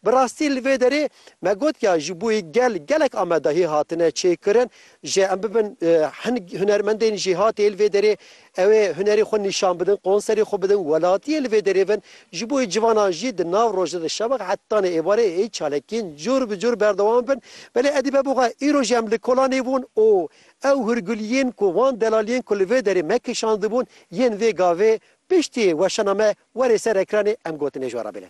Bi rastî li vê derê me got ya ji bo yê gel gelek amedahî hatine çêkirin jê em bibin hin hunermendên jêhatê li vê derê ew ê hunerê xwe nîşan bidin, konserê xwe bidin, welatiyê li vê derê bin ji bo yê civanan jî di nav rojê de şeweq hetanê êvarê ê çalakiyên cor bi cor berdewam bin. Belê edî be bixe îro jî em li Kolanê bûn û ew hûrguliyên ku wan delaliyên ku li vê derê me kişandibûn yên vê gavê piştî weşana me werê ser ekranê em gotinê ji we re bêne.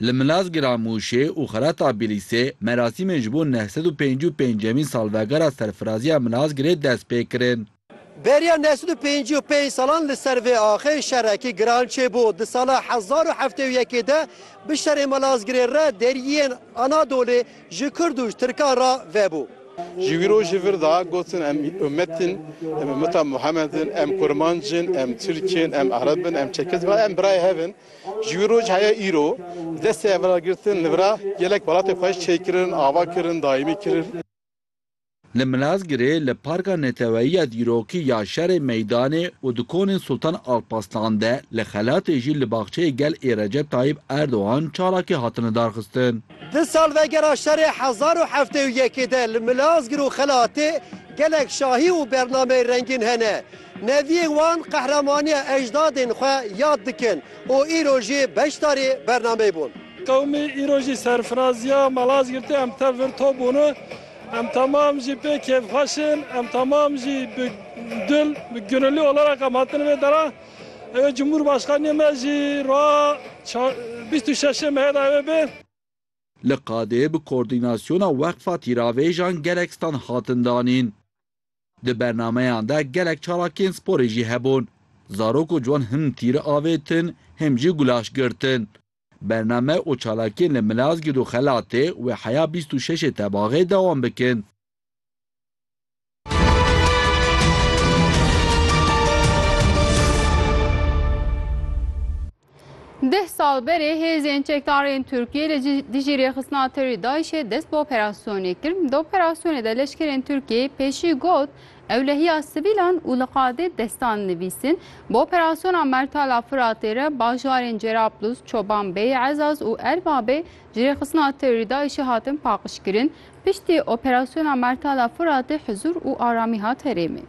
Li Milazgira Mûşê û Xerata Bîlîsê merasîmên ji bo neh sed û pêncî û pêncemîn salvegera serfiraziya Milazgirê dest pê kirin. Beriya neh sed û pêncî û pênc salan li ser vê axê şerekî giran çêbû. Di sala hezar û heftê û yekê de bi şerê Milazgirê re deriyên Anadolê ji Kurd û ji Tirkan re vebû. Ji wî rojê vir de gotin em ummet in, em ummeta Muhammed in, em kurmanc in, em tirk in, em ereb in, em çekiz bin, em birayê hev in. Ji wî roj heye îro destê hevragirtin li vira gelek welatê xweş çê kirin, ava kirin, daîmî kirin. Li Milazgirê li Parka Neteweyî ya Dîrokî ya Şerê Meydanê û di konên Sultan Alpaslan de li Xelatê jî li Baxçeyê Gel ê Recep Tayîp Erdogan çalakî hatin lidarxistin. Di salvegera şerê hezar û heftê û yekê de li Milazgir û Xelatê gelek şahî û bernameyê rengîn hene. Neviyên wan qehremanîya ecdadên xwe yad dikin û îro jî beşdarî bernameyê bûn. Qewmî îro jî serfirazîya Malazgirtê em tev vir to bûne. Em temam jî pê kêfxweş in. Em temam jî bi dil, bi gunilî olerek em hatine vê dera. Ew ê Cumhurbaşkanîyê me jî roja çar bîst û şeşê Mehê de ew ê bê. Li Qadê bi Koordînasyona Weqfa Tîravêjan gelek stand hatin danîn. Di bernameyan de gelek çalakiyên sporê jî hebûn. Zarok û ciwan him tîri avêtin, him jî gulaş girtin. Bername û çalakiyên li Milazgirt û Xelatê wê heya bîst û şeşê tebaxê dewam bikin. Deh sal berê hêzên çekdarên Tirkiyê li dijî rêxistina terorê DAIŞ'ê dest bi operasyonê kir. Di operasyonê de leşkerên Tirkiyê pêşî got ew lehiya sivîlan û li qadê destan nivîsîn bi operasyona Mertala Firatê re bajarên Cerablus, Çobanbey, Ezaz û Erbabê ji rêxistina terorê DAIŞ'ê hatin paqijkirin. Piştî operasyona Mertala Firatê hizûr û aramî hat herêmê.